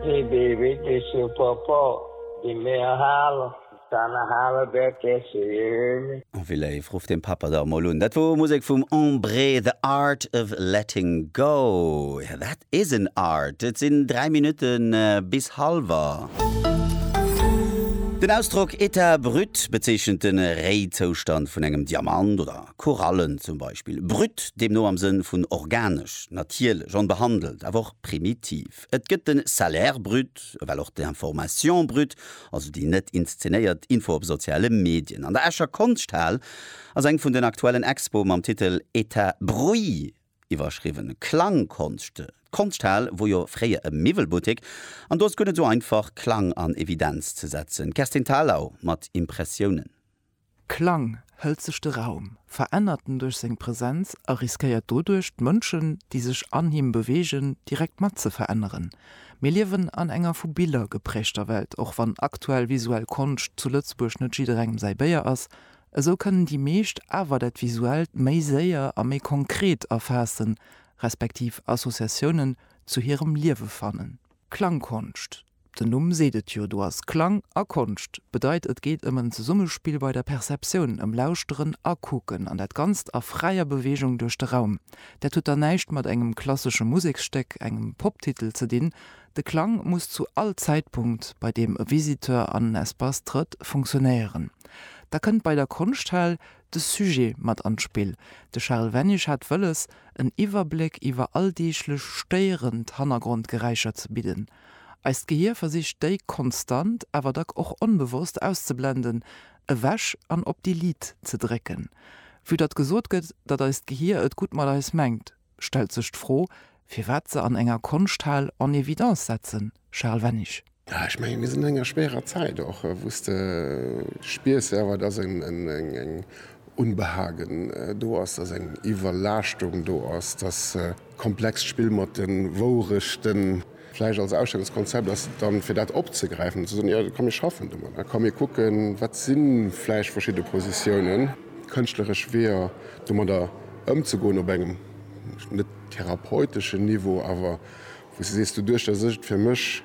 Hee bee wierklech jo Papa dee mär hale kanne hale wärt d'Esse jee. Oh wéi léif, rufft den Papa da emol un. Dat wor Musek vum Embré, The Art of Letting Go. Jo dat is en Art. Et sin 3 Minuten bis halwer. Den Ausdrock Etat brut bezeechent den Réizoustand vun engem Diamant oder Korallen zum Beispill. Brut deemno am Sënn vun organesch, natierlech, onbehandelt, awer och Primitiv. Et gëtt de Salaire brut, ewell och d'Information brute, also déi net inszenéiert Info op soziale Medien. An der Escher Konschthal ass eng vun den aktuellen Expoe mam Titel Etat Bruit iwwerschriwwen, Klangkonscht. D'Konschthal wor jo fréier e Miwwelbuttek an do ass guer net esou einfach Klang an Evidenz ze setzen. D'Kerstin Thalau mat Impressiounen. Klang hëlt sech de Raum, verännert en duerch seng Presenz a riskéiert doduerch, d'Mënschen, déi sech an him beweegen, direkt mat ze veränneren. Mir liewen an enger vu Biller gepräägter Welt, och wann aktuell visuell Konscht zu Lëtzebuerg net jidderengem säi Béier ass, esou kënnen déi meescht awer dat Visuellt méi séier a méi konkret erfaassen, respektiv Associatiounen zu hirem Liewe fannen. Klangkonscht, Den Numm seet et jo, do ass Klang a Konscht. Bedeit et geet ëm en Zesummespill bei der Perceptioun, ëm Lauschteren a Kucken, an dat Ganzt a fräier Beweegung duerch de Raum. Dat huet dann näischt mat engem klassesche Museksstéck, engem Poptitel ze dinn. De Klang muss zu all Zäitpunkt, bei deem e Visiteur an en Espace trëtt, funktionéieren. Da kënnt bei der Konschthal de Sujet mat an d'Spill. De Charel Wennig hat wëlles, en Iwwerbléck iwwer alldeeglech stéierend Hannergrondgeräischer ze bidden. Eist Gehier versicht déi konstant, awer dack och onbewosst auszeblenden, ewech an op Delete ze drécken. Vue datt gesot gëtt, datt eist Gehier et gutt mat eis mengt, stellt sech d'Fro, firwat se an enger Konschthal en évidence setzen? Charel Wennig. Jo, ech menge mir sinn an enger schwéierer Zäit och, wou s de spiers selwer, datt eng Unbehagen do ass, datt eng Iwwerlaaschtung do ass, datt. Komplext Spill mat de Wourechten. Vläicht als Ausstellungskonzept ass dann, fir dat opzegräifen, ze soen, jo, komm mir schaffen domadder, komm mir kucken, wat si vläicht verschidde Positiounen, kënschtleresch Weeër domadder ëmzegoen op engem net therapeuteschen Niveau, awer wou s de sees, doduerch datt ech et fir mech.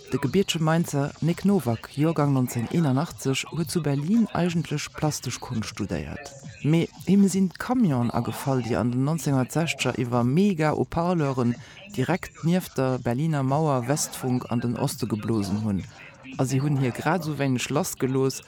De gebietsche Mainzer Nic Nowak, Joergang 1981, huet zu Berlin eigentlech plastesch Konscht studéiert, mee him sinn d'Camionen agefall, déi an den 1960er iwwer Mega-Haut-Parleuren direkt nieft der Berliner Mauer Westfunk an den Oste geblosen hunn, a si hunn hie grad esou wéineg lassgelooss,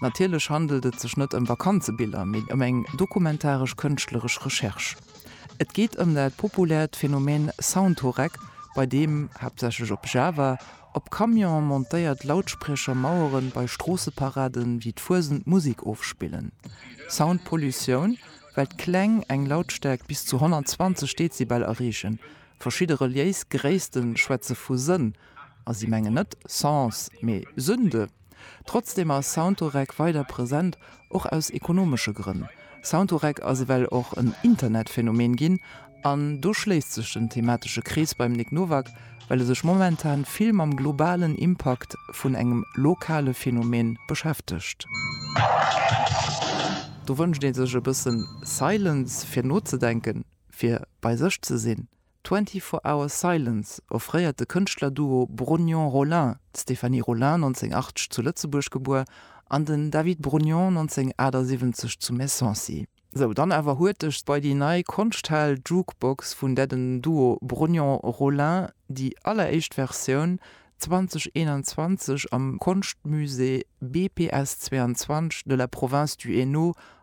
Natierlech handelt et sech net ëm Vakanzebiller, mee ëm eng dokumentaresch-kënschtleresch Recherche. Et geet ëm dat populäert Phänomen Soundhoreck, bei deem, haaptsächlech op Java, op Camionen montéiert Lautspriecher Maueren bei Stroosseparaden ewéi d'Fuesent Musik ofspillen. Soundpollutioun, well d'Kläng eng Lautstäerkt bis zu 120 Dezibel erreechen. Verschidde reliéis Gréisste schwätze vu Sënn, a si mengen net Sens, mee Sünde. Trotzdeem ass Soundorec weider present, och aus ekonomesche Grënn. Soundorec ass ewell och en Internetphänomen ginn, an do schléisst sech den thematesche Krees beim Nic Nowak, well e sech momentan vill mam globalen Impakt vun engem lokale Phänomen beschäftegt. Do wënscht ee sech e bëssen Silence fir nozedenken, fir bei sech ze sinn. Twenty Four Hour Silence offréiert de Kënschtlerduo Brognon-Rollin, d'Stéphanie Rollin, 1980 zu Lëtzebuerg gebuer, an den David Brognon, 1978 zu Messancy. Sou, dann awer huerteg bei déi nei Konschthal-Jukebox vun där den Duo Brognon-Rollin déi alleréischt Versioun 2021 am Konschtmusée BPS 22 de la Province du Hainaut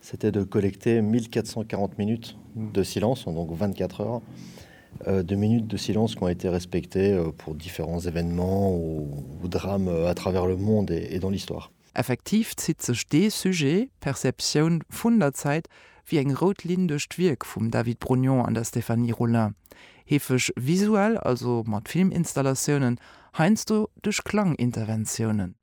C'était de collecter 1.440 minutes de silence en donc 24 heures de minutes de silence qui ont été respectées pour différents événements ou drames à travers le monde et dans l'histoire. Effektiv zitt sech dee Sujet, d'Perceptioun vun der Zäit, wéi eng rout Linn duerch d'Wierk vum David Brognon an der Stéphanie Rollin. Heefeg visuell, also mat Filminstallatioune, heiansdo duerch Klanginterventiounen.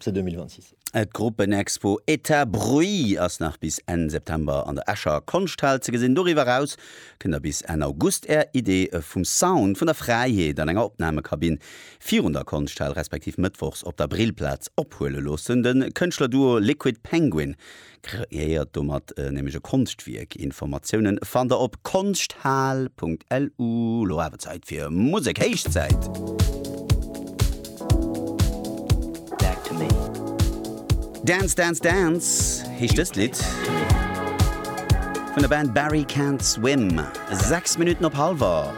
ce 2026. D'Gruppenexpo Etat Bruit ass nach bis Enn September an der Escher Konschthal ze gesinn. Doriwwer eraus kënnt der bis Enn August Är Idee vum Sound vun der Fräiheet an enger Opnamekabinn virun der Konschthal respektiv mëttwochs op der Brillplaz ophuele loossen. De Kënschtlerduo Liquid Penguin Kreéiert domat nämlech e Konschtwierk. Informatiounen fannt der op konschthaal.lu. Lo awer Zäit fir Musek. Héichzäit! Dance Dance Dance heescht dëst Lidd vun der Band Barry Can't Swim. 6 Minutten op Hallwer.